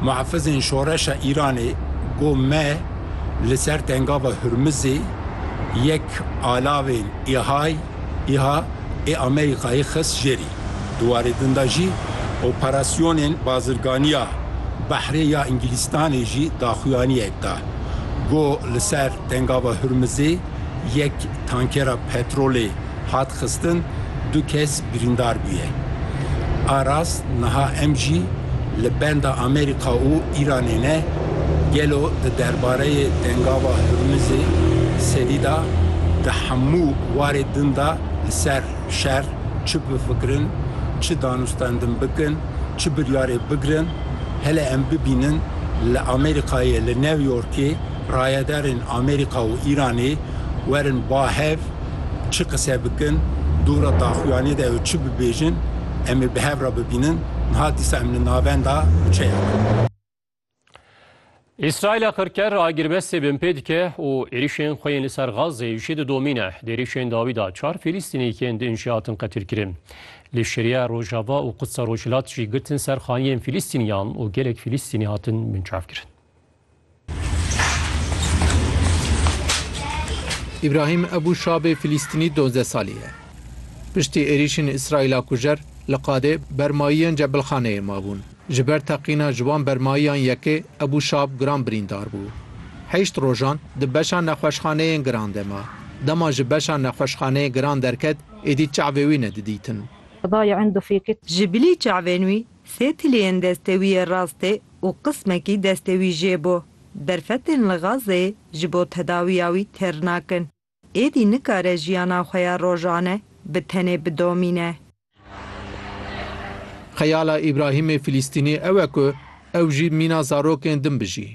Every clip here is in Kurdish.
Muhafizên Şoreşa Îranê got me li ser Tengava Hurmizê yek alavên İHA'y, İHA, ê Amerîkayê xist jêrî. Di warê din de jî operasyonên bazirganiya behrê ya Îngilîstanê jî daxuyaniyek da. Got li ser Tengava Hurmizê yek tankera petrolê hat xistin du kes birîndar bûye. Aras niha em jî li benda Amerîka û Îranê ne, gelo di derbareyê dengava Hurmizê serî da di hemû warê din da li ser şer çi bifikirin, çi danûstendin bikin, çi biryarê bigirin, hele em bibînin li Amerîkayê li New Yorkê, rayedarên Amerîka û Îranê werin ba hev çi qise bikin, dûra daxuyanê de ew çi bibêjin, em ê bi hev re bibînin niha dîsa em li navenda kuçeya me. Îsraîla qirker ragirbestê bin pê dike û êrişên xwe yên li ser Gazê jî didomîne. Di êrişên dawî de çar Fîlîstînîkên din jî hatin qetilkirin. Li Şeriya Rojava û Qudsa Rojhilat jî girtin ser xaniyên Fîlîstîniyan û gelek Fîlîstînî hatin binçavkirin. Îbrahîm Ebû Şabê Filîstînî dozdeh salî ye. Piştî êrîşên Îsraîla kujer li qadê bermayiyên cebilxaneyê mabûn. Ji ber teqîna ji wan bermayiyan yekê Ebû Şab giran birîndar bû. Heşt rojan di beşa nexweşxaneyên giran de ma. Dema ji beşa nexweşxaneyê giran derket êdî çavê wî ne didîtin. Ji bilî çavên wî Sê tiliyên destewiyê rastê û qismekî destewî jê bo. Derfetên li Gazê ji bo tedawiya wî têr nakin. Êdî nikare jiyana xwe ya rojane bi tenê bidomîne. Xeyala Îbrahîmê Filîstînî ew e ku ew jî mîna zarokên din bijî.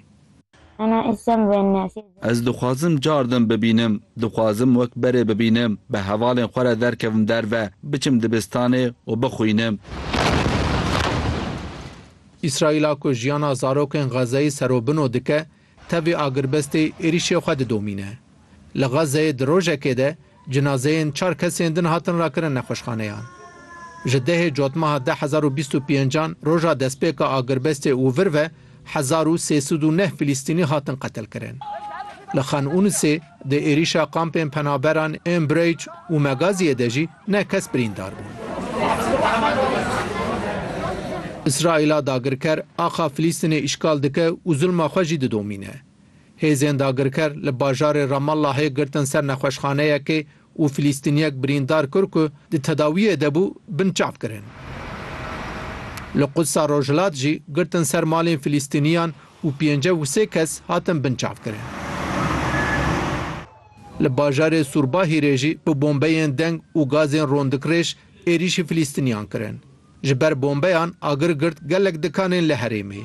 Ez dixwazim car din bibînim. Dixwazim wek berê bibînim, bi hevalên xwe re derkevim derve, biçim dibistanê û bixwînim. Îsraîla ku jiyana zarokên Xezeyê serobino dike, tevî agirbestê êrîşê xwe didomîne. Li Xazzeyê di rojekê de cinazeyên çar kesên din hatin rakirin nexweşxaneyan. Ji dehê cotmeha de hezar û bîst û pêncan roja destpêka agirbestê û vir ve hezar û sê sed û neh Filîstînî hatin qetilkirin. Li Xan Unisê di êrîşa kampên penaberan ên Bureyc û Megaziyê de jî neh kes birîndar bûn. Îsraîla dagirker axa Filîstînê îşgal dike û zulma xwe jî didomîne. Hêzên dagirker li bajarê Ramallahê girtin ser nexweşxaneyekê û Filîstîniyek birîndar kir ku di tedawiyê de bû bin çav kirin. Li Qudsa Rojhilat jî girtin ser malên Filîstîniyan û pêncî û sê kes hatin bin çav kirin. Li bajarê Sûrbahîrê jî bi bombeyên deng û gazên rondikirêj êrîşî Filîstîniyan kirin. Ji ber bombeyan agir girt gelek dikanên li herêmê.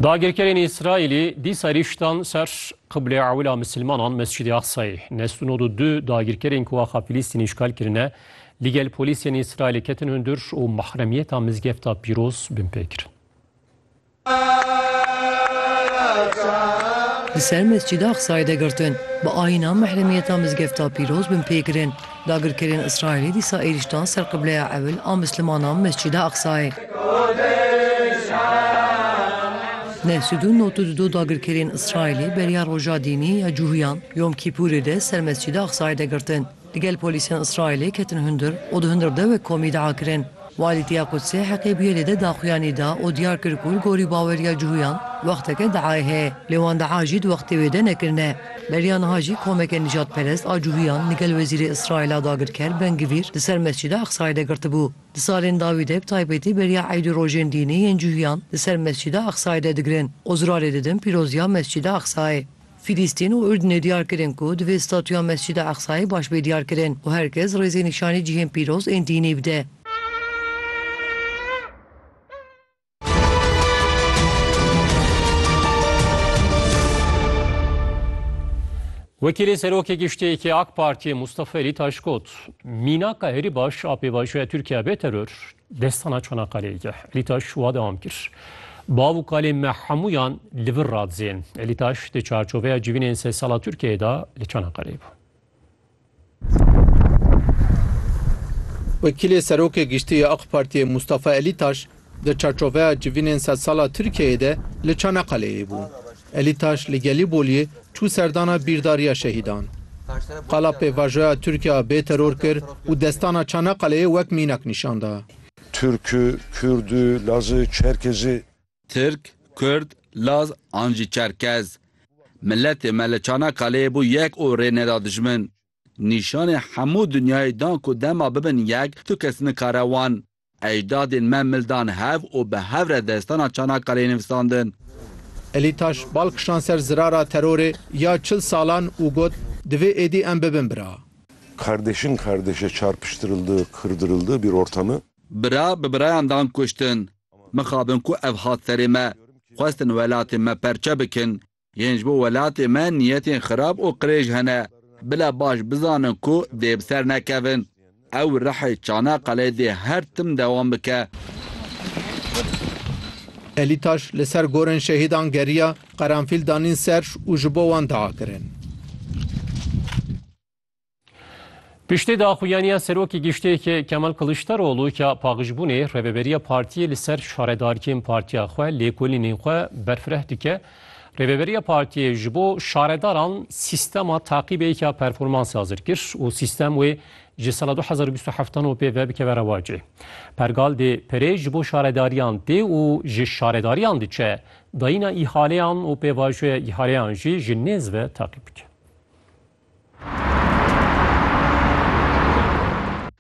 Dagirkerên Îsraîlî dîsa rîştan ser qiblê ewil a misilmanan Mescidê Aqsayê. Nest û nod û du dagirkerên ku axa Filîstînê îşgal kirine, li gel polîsên Îsraîlê ketin hundir û mahremiyeta mizgefta pîroz binpê kirin. Li ser Mescîda Aqsayê de girtin. Bi ayîna mehremiyeta mizgefta pîroz bin pê kirin. Dagirkerên Îsraîlî dîsa êrîş dan ser qibleya ewil a mislimanan Mescîda Aqsayê. Neh sed û nod û dudo dagirkerên Îsraîlî beriya roja dînî ya Cuhiyan, Yom Kîpûrê de ser Mescîda Aqsayê de girtin. Li gel polîsên Îsraîlê ketin hundir û di hundir de wek komî dea kirin. Walî Tîya Qudsê heqê bûyê lê de daxuyanî da û diyar kir ku li gorî baweriya cihûyan wexteke deayê heye lê wan dea jî di wextê wê de nekirine. Beriya niha jî komeke nîjadperest a cihûyan li gel wezîrê Îsraîla dagirker Ben Gvîr li ser Mescîda Aqsayê de girtibû. Di salên dawî de bi taybetî beriya eyd û rojên dînî yên cihûyan li ser Mescîda Aqsayê de digirin û zirarê didin pîroziya Mescîda Aqsayê. Filîstîn û Urdinê diyar kirin ku divê statuya Mescida Eqsayê baş bê diyarkirin û her kes rêzê nîşanî cihên pîroz ên dînî bide. Wekîlê Serokê Giştîyekê AK Partiyê Mustafa Elîtaş got, Mînaka herî baş a pêvajoya Tirkiye bê teror, Destana Çanakkale'yê ke Elîtaş şûwa dewam kir. Bav û kalên me hemûyan li vir radizên. Elîtaş di çarçoveya civînên sed sala Tirkiyeyê de li Çanakkale'yê bû. Wekîlê Serokê Giştî yê Ak Partiyê Mustafa Elîtaş di çarçoveya civînên sed sala Tirkiyeyê de li Çanakkale'yê bû. Elî Taş li Gelîbolyê çû serdana bîrdariya şehîdan. Qala pêvajoya Tirkiye a bêteror kir û destana Çanaqqaleyê wek mînak nîşan da. Tirk, Kurd, Laz, Çerkez. Tirk, Kurd, Laz an jî Çerkez. Miletê me li Çanaqqaleyê bû yek û rê neda dijmin. Nîşanê hemû dinyayê dan ku dema bibin yek, tu kes nikare wan. Ejdadên me mil dan hev û bi hev re destana Çanakaleyê nivîsandin. Elî taş bal kişand ser zirara terorê ya çil salan û got, Divê êdî em bibin bira. Kardeşin kardeşe çarpıştırıldı, kırdırıldı bir ortamı. Bira bi birayan dan kuştin. Mixabin ku ev hat serê me. Xwestin welatê me perçe bikin. Yên ji bo welatê me niyetên xirab û qirêj hene. Bila baş bizanin ku dê bi ser nekevin. Ew rihê Çanaqqalê dê her tim dewam bike. Elîtaş li ser gorên şehîdan geriya, qeranfîl danîn ser û ji bo wan diakirin. Piştî daxuyaniya Serokê Giştê Kemal Kiliçdaroglu ke paxijbûnê Rêveberiya Partiyê li ser şaredarkên partiya xwe lêkolînên xwe berfireh dike, Rêveberiya Partiyê ji bo şaredaran sîstema taqîbêka performansê hazir kir û sîstem wê ji sala du hezar û bîst û heft an û pê ve bikeve rewacê. Pergal dê perê ji bo şaredariyan tê û ji şaredariyan diçe dayîna îhaleyan û pêvajoya îhaleyan jî ji nêz ve taqîb bike.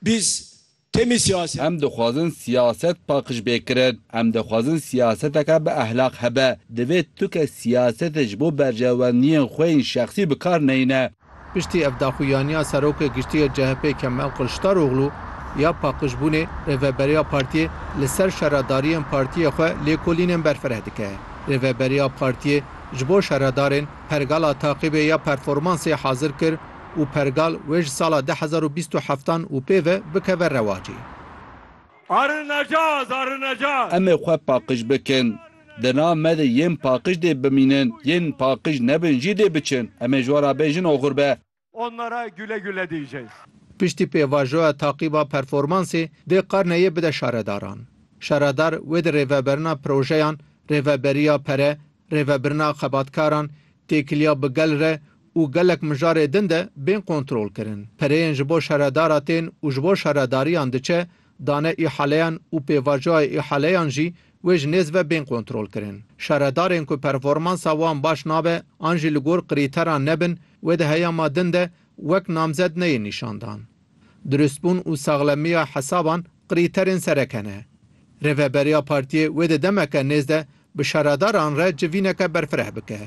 Biz temî siyaset. Em dixwazin siyaset paqij bê kirin. Em dixwazin siyaseteke bi ehlaq hebe. Divê tu ke siyasetê ji bo berjewendiyên xwe yên şexsî bi kar neyne. Piştî ev daxuyaniya Serokê Giştî yê CHP'ê Kemal Kiliçdaroglu ya paqijbûnê, Rêveberiya Partiyê li ser şaredariyên partiyê xwe lêkolînên berfireh dike. Rêveberiya Partiyê ji bo şaredarên Pergala taqîbê ya performansê hazir kir û pergal wê ji sala du hezar û bîst û heft an û pê ve bikeve rewacê. Arinecaz! Arinecaz! Em ê xwe paqij bikin. Di nav me de yên paqij dê bimînin, yên paqij nebin jî dê biçin. Em ê ji we re bê jin oxir be. Onlara güle güle diyeceğiz. Piştî pêvajoya taqîba performansê dê karneyê bide şaredaran. Şaredar wê di rêveberina projeyan, rêveberiya pere, rêvebirina xebatkaran, têkiliya bi gel re û gelek mijarê din de bên kontrolkirin. Pereyên ji bo şaredara tên û ji bo şaredariyan diçe, dane îhaleyan û pêvajoya îhaleyan jî Wê ji nêz ve bên kontrolkirin. Şaredarên ku performansa wan baş nabe an jî li gor krîteran nebin, wê di heyama din de wek namzed neyên nîşandan. Dirustbûn û saxlemiya hesaban krîterên sereke ne. Rêveberiya partiyê wê di demeke nêz de bi şaredaran re civîneke berfireh bike.